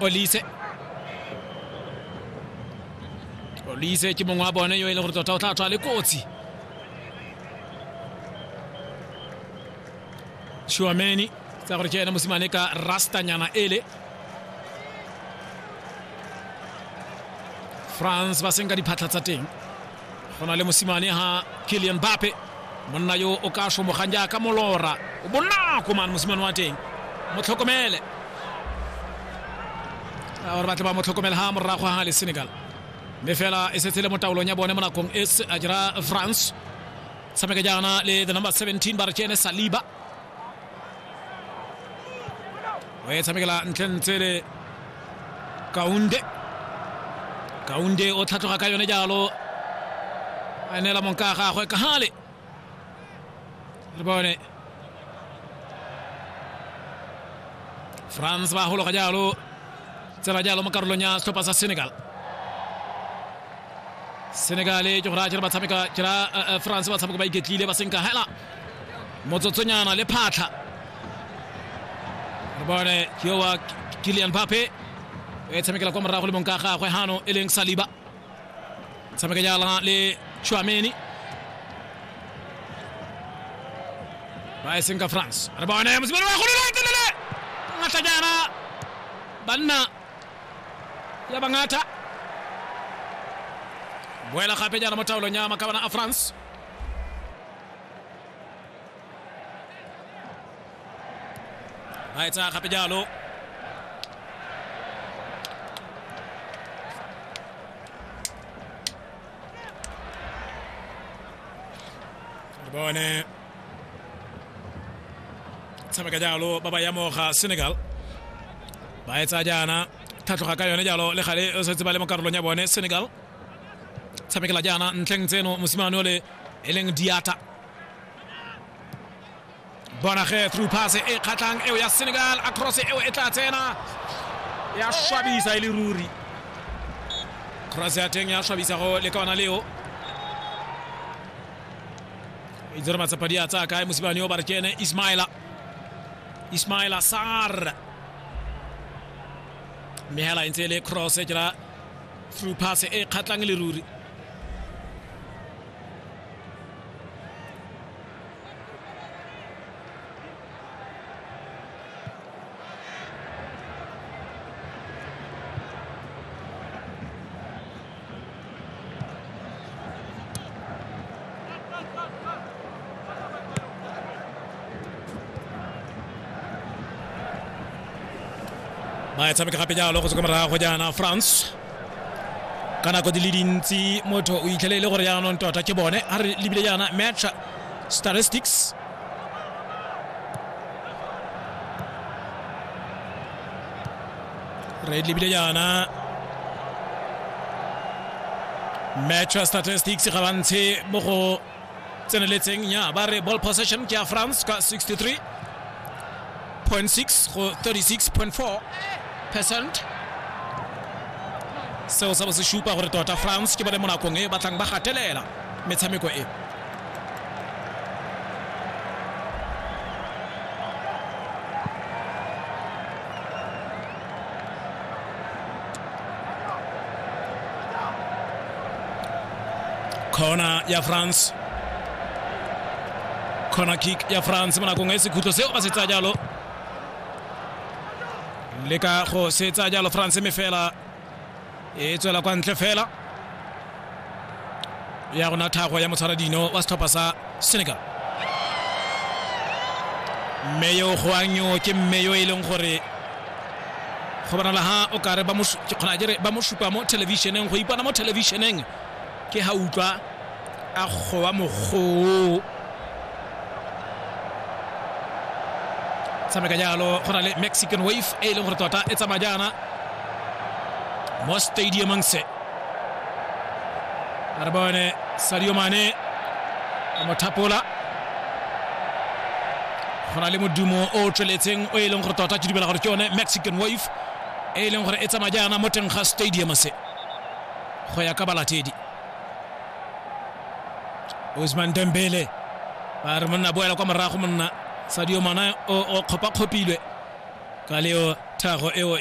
olise olise ke mongwe wa bone yo e leng gore tota o tla tswa le kotsi shuameni tsa gore ke ene mosimane ka rastanyana ele france ba senka diphatlha tsa teng go na le mosimane ga kilian bape monna yo o ka somogang jaaka molora o bonako mane mosimane wa teng mo tlhokomele gore batle ba mo tlhokomele ga morago ga le senegal mme fela e setse le mo taolong ya bone mo nakong e a dira france tshameka jaana le the number 17 ba re ke ene saliba o e tshamekela ntlentshe le kaunde kaunde o tlhatlhoga ka yone jalo a neela monka a gagwe ka gale re bone france ba gologa jalo tsela jalo mo karolong ya setlhopha sa senegal senegal ke go raya jere ba tshameka jera france ba tshameka ba iketlile ba senka hela motsotsonyana le phatlha re bone ke yo wa kilian pape e tshamekela kwa morago le mong ka gagwe gano e leng saliba tshameka jala le chuameni ba e seng ka france re bone mosimane wa golole telele ngata jana banna ya bangata boela gape jana mo taolong ya makabana a france Nei, ta Capello. bone tshameka jalo ba ba yamoga senegal ba etsa jaana thatloga ka yone jalo le gale setse ba le mo karolong ya bone senegal tshamekela jaana ntlheng tseno mosimane ole e leng diata bona ge through pass e kgatlhang eo ya senegal across eo e tla tsena ya swabisa e le ruri cross ya teng ya swabisa go le ka ona leo e dire matsapa di a tsaya kae mosimane yo ba re kene ismaila ismaila sar mme hela e ntse e le cross ke ra through pass e kgatlang le ruri ba e tshameka gape jalo go se kwa morago jaana france ka nako di le dintsi motho o itlhele e le gore jaanong tota ke bone a re lebile jaana match statistics re lebile jaana match statistics ga ba ntshe mo go tseneletseng nya ba re ball possession ke ya france ka 63.6 go 36.4 percent seo sa bo se supa gore tota france ke bone mo nakong e batlang ba gatelela metshameko e Kona ya France. Kona kick ya France mo nakong e sekhutlo seo ba se tsaya jalo. Le ka go se tsaya jalo France me fela e tswela kwa ntle fela ya gona thago ya motshwaradino wa setlhopha sa senegal mme yo goanyo ke mme yo e leng gore go bonala ha o kare ba mo su- ke kgona jere ba mo supa mo thelebišeneng go ipona mo thelebišeneng ke ha utlwa a gowa mogoo tshameka jalo go na le mexican wave e e leng gore tota e tsamaya jaana mo stadiumang se a re bone sadio mane a mo thapola go na le modumo o o tsweletseng o e leng gore tota ke dumela gore ke yone mexican wave e e leng gore e tsamaya jaana mo teng ga stadium se go ya ka balatedi osman dembele ba re monna boela kwa morago monna sadio mana o kgopakgopilwe ka leo thago eo ya